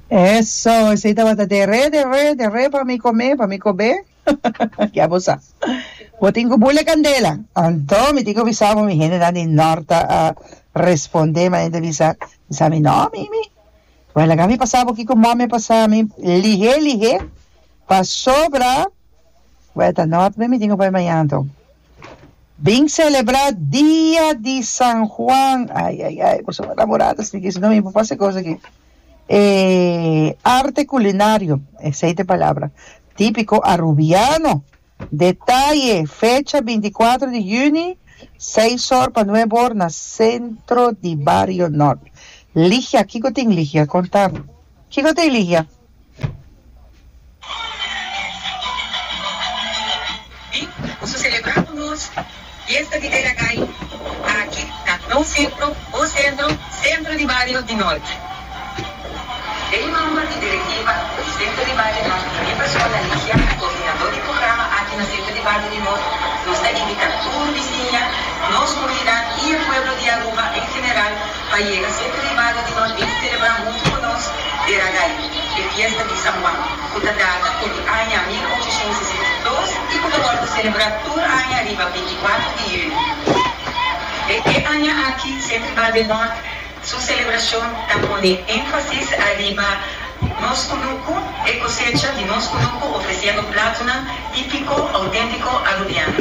Eso, esei tabata deré, deré, deré pa mi comé, pa mi cobé. Ya bo sa. Bo tin cu bule candela. Anto mi tin cu bisa bo mi hendenan di nort ta a respondé ma enta bisa bisa mi no mi mi. Bo laga mi pasa bo kico mami a pasa mi lihé lihé pasobra. Poeta Nort me mi tin ku bai mañana anto. Bin selebrá dia di San Juan, ai ai ai boso bo namoradas tin kisa no mi por pasa e kos aki. E arte kulinario, esa e ta e palabra, típiko arubiano, detaye, fecha binti i kuater di yüni, seis or pa nuebe or na sentro di bario Nort. Ligia, kiko tin Ligia? Kontan, kiko ta e Ligia? Di boso selebrá ku nos Fiesta di Tera Kai aki na Nou Sentro o Sentro, Sentro di Bario di Norte. Lei Norma i Direktiva, Presidente di Bario Norte i mi persona Ligia, koordinadó di programa aki na Sentro di Bario di Norte, nos ta invitá tur bisiña, nos komunidat i e pueblo di Aruba en general, Pa yega siete di mayo di nos bin selebrá huntu ku nos e Ragay, e fiesta di San Juan, ku ta data ku di aña mil ochocientos sesenta i dos i ku ta wòrdu selebrá tur aña riba bintikuatru di yuni. E aña aki Sint Tribal del Norte su selebrashon ta pone énfasis ariba nos kunuku, e kosecha di nos kunuku, ofresiendo platunan típiko, auténtiko Arubiano.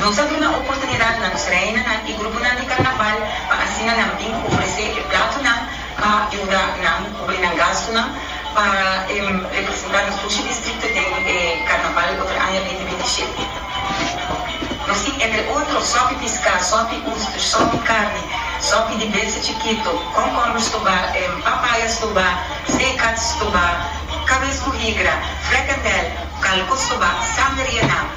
Nos a duna oportunidat na nos reinanan y gruponan di carnaval pa asina nan bin ofrece e platonan pa yuda nan cubri nan gastonan pa representa nos Fushi Distrito den e carnaval otro aña bindi bindi shete. Nos tin entre otro sopi pisca, sopi oester, sopi carne, sopi di besa chikito, concorber stoba, papaya stoba, zeekat stoba, cabes cu higra, frekendel, calco stoba, sanderia nan.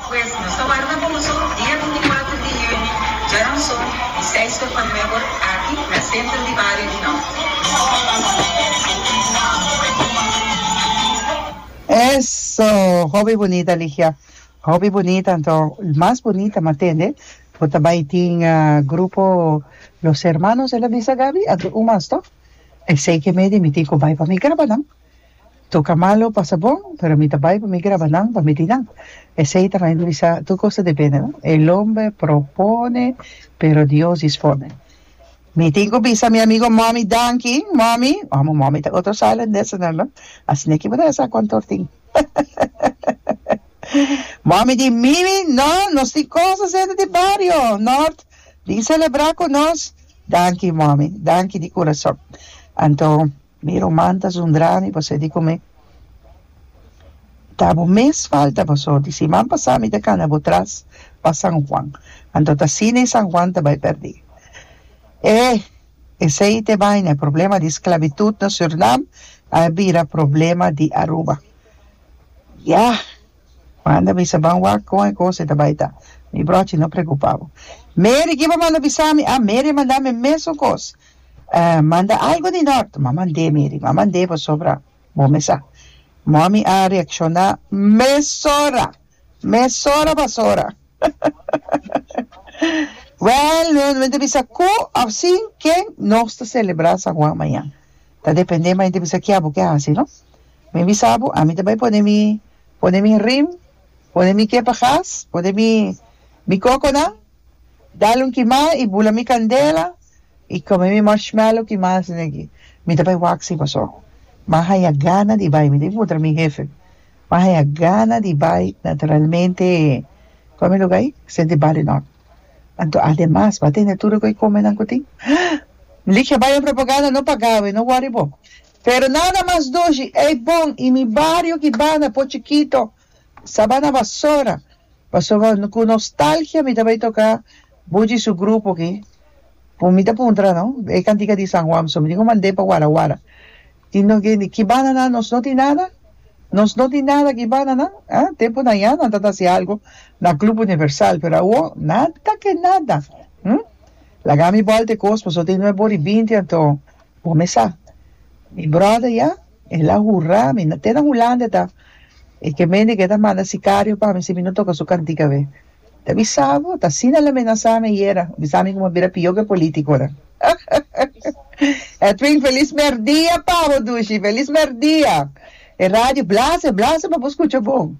Pues, nos ta warda cu boso dia binticuater di hüni, djaramson, di seis tur pa nueber, aki na centro di bario di no. Eso! Hopi bunita Ligia. Hopi bunita anto mas bunita matende bo ta bai tin grupo Los Hermanos el a bisa Gaby anto un mas to esey ke me di mi tin ku bai pa mi graba nan. Toca malo pasa bon pero mi ta bay pa mi graba nan pa mi di nan esey ta mey mi bisa tur cos ta depende no el hombre propone pero Dios dispone mi tin cu bisa mi amigo Mommy danki Mommy amo Mommy ta otro silent listener no asina kiba ta hesa contor tin Mommy di Mimi no nos tin cos hacendo den bario North bin celebra cu nos danki Mommy danki di curason anto. Mi ruman ta zundra mi pa sedi ku mi ta bo mes falta paso di siman pasa mi ta kana bo tras pa San Juan anto ta asina e San Juan ta bai perdi e esei ta e baina e problema di sklabitut na Surnam a bira problema di Aruba ya manda bisa ban wak kon e kos e ta bai ta mi brochi no preokupa bo Mary kiba manda bisa mi a Mary a manda mi e mesun kos. Ah, manda algo di nort. Mama nd'é, Mary, mama nd'é pasobra bo me sa. Mommy a reakshoná, Mesora! Mesora pasobra! Wèl, no no ta bisa ku òf sin ken nos ta selebrá San Juan mañan. Ta dependé mai di bisa ki'a bo ke hasi, no? Mi bisa bo, ami ta bai pone mi pone mi rim, pone mi kepagas, pone mi mi kokonan. Dal un kimá i bula mi kandela i kome mi marshmallow kimá si no eki mi ta bai wak si paso mi a haña gana di bai mi tin ki puntra mi hefe mi a haña gana di bai naturalmente kua mi luga ai sete di bali nòt anto ademas ba tene tur loke komenan ku tin mi lik a bai na propaganda no pagá awe no wòri bo pero nada mas dushi ei bon i mi bario ki banda po chikito Sabana Basora pasobra ku nostalgia mi ta bai toka Buchi su grupo aki ku mi ta puntra no e kantika di San Juan pasobra mi tin ku mand'é pa Wara Wara tin no ke ni ki banda nan nos no tin nada nos no tin nada ki banda nan a tempunan ya nan ta hasi algu na club universal pero awor nada ke nada hm laga mi bòl te kos pasobra tin no e bor di binti anto por mi sa mi bròder ya. El a hurá mi, te na Hulanda ta e ke mende ke ta manda sikario pa mi si mi no toka su kantika be. Ta bisa bo, ta asina el a menasá mi ayera, bisa mi ku mi a bira pió ke polítiko ora. Edwin, felis mèrdia pa bo, Dushi, felis mèrdia! E radio blase, blase pa bo skucha bon.